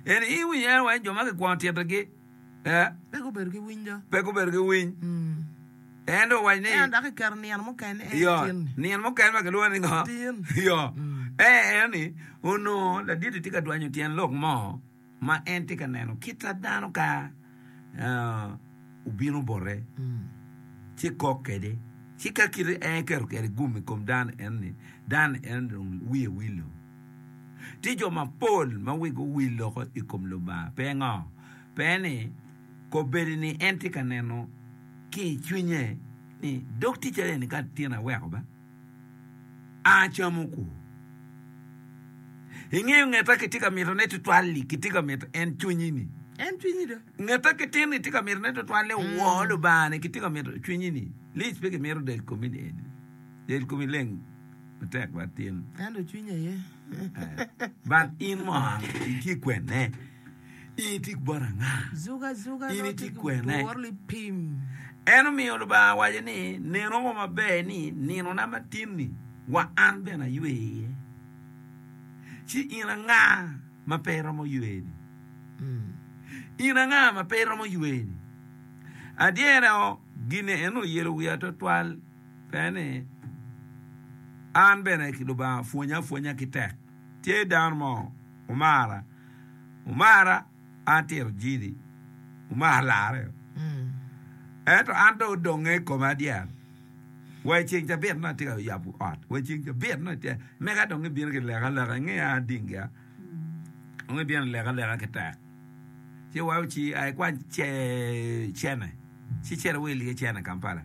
Eni iwi en wai jo ma kikwongo titigi eh. Pe gubedo ki winy do. Pe gubedo ki winy. En dong owaco ni. Ento dok kiketo nino mukene eh Yo, tin. nino mukene ma kilwongo ni ngo? Tin. Yo, eh en ni onongo laditi tye ka dwanyo tyen lok mo ma en tye ka neno kit ta dano ka. obino bote, ci kok kwede. Ci ka kite en eketo kwede gum i kom dano eno-ni, dano eno-ni dong wiye wilo. Tye jo mapol ma wigi owil loko i kom Lubanga. Pingo? Pien ni kobedo ni en tye ka neno ki i cwinye ni dog ticce eni ka tyen aweko ba, acamo kwo. Ingeyo ngeta kitye ka mito ne tutwal-li, kitye ka mito en cwinyi-ni. En cwinyi do. Ngeta ki tin-ni tye ka mito ne tutwal ni mm. woo Lubanga-ni kitye ka mito cwinyi-ni. Lic pe kimito del komi ni eni. Del komi leng matek bat tin. Ento cwinyi aye. But in mo itye kwenne. In itic bot anga? In itic kwene? En omiyo Lubanga awaco ni, Nen oko maber ni ninona ma tin-ni wa an bene aywe iye. Ci in anga ma pe iromo ywene? In anga ma pe iromo ywene? Adyera o, gin en oyelo wiya twatwal pe ni an bene Lubanga pwonya apwonya ki tek. Tye dano mo omara, omara an tito jili, omara larre o. Ento an dong odonge i kome adyera. Wa i ceng cabit na tye ka yabo ot, wa i ceng cabit na tye, mega dong ibino ki leka leka inge a dingia. Dong ibino leka leka ki tek. Ci wa uci a ikwany ce cene, ci cere wil ki cene Kampala.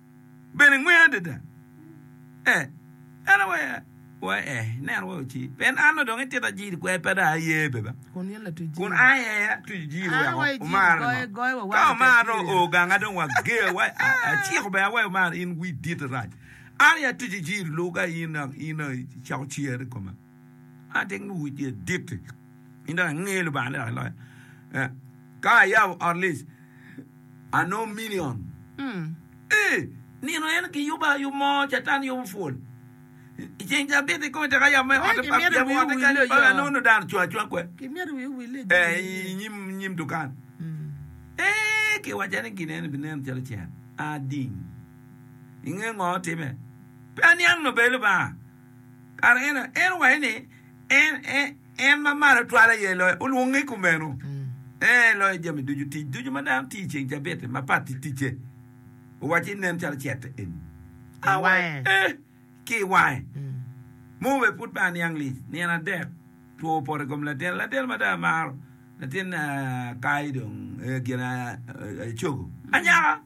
bene ngweng adada. Eh, en aye waya, wa eh, neno wa oci. Pien an odong itita jiri kwer pe dong aye beba. Kun aye atuco jiri weko omara ngo. Ka omara dong oo ganga dong wa ger, wa ah, aciko bene aweyo omara in wi dit rac. An aye atuco jiri luga in, in aye icako cere i koma. Ateng luwic ni adit in dok angeyo Lubanga ni dok iloya. Ka ayabo ot lic, anongo milion. Ee, nino en giyubo ayub mo, Catan yubo pwol. I ceng ca abito i kome tek ayabo me ote, ayabo ote kany, pala anongo nongo dano ocung acunga kwede, ee, i nyim dukan. Ee, kiwacca ni gin eni binen calo cen ading. Ingeyo ngo timme? Pe aniang nobel Lubanga. Kare eno, en owaco ni en e En ma Malo Twal aye loyo, olwonge i kumeno. Ee, loyo jami ducu, tic ducu ma dano tiyo i ceng Cabit-ti mapat ki ticce. Owaco ni nen calo cete eni a wa i ee ki i wange. Mo obedo pud pe aniang lic, nino adek, two opoto i kom latin, latin ma dong amaro, latin aa ka i dong ee gin aa cogo anyaka.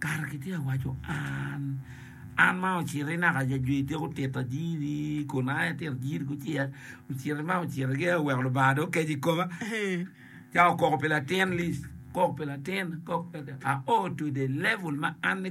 Kara kitye ka waco an, an ma ociti naka i ajwi tika otito ajiri kun an aye atito ajiri kucel, ociti ma ociti ki oweko Lubanga dong okeco i koma, cako koko pi latin Liz, kok pi latin, kok pi latin, aoo to the level ma an ni koko.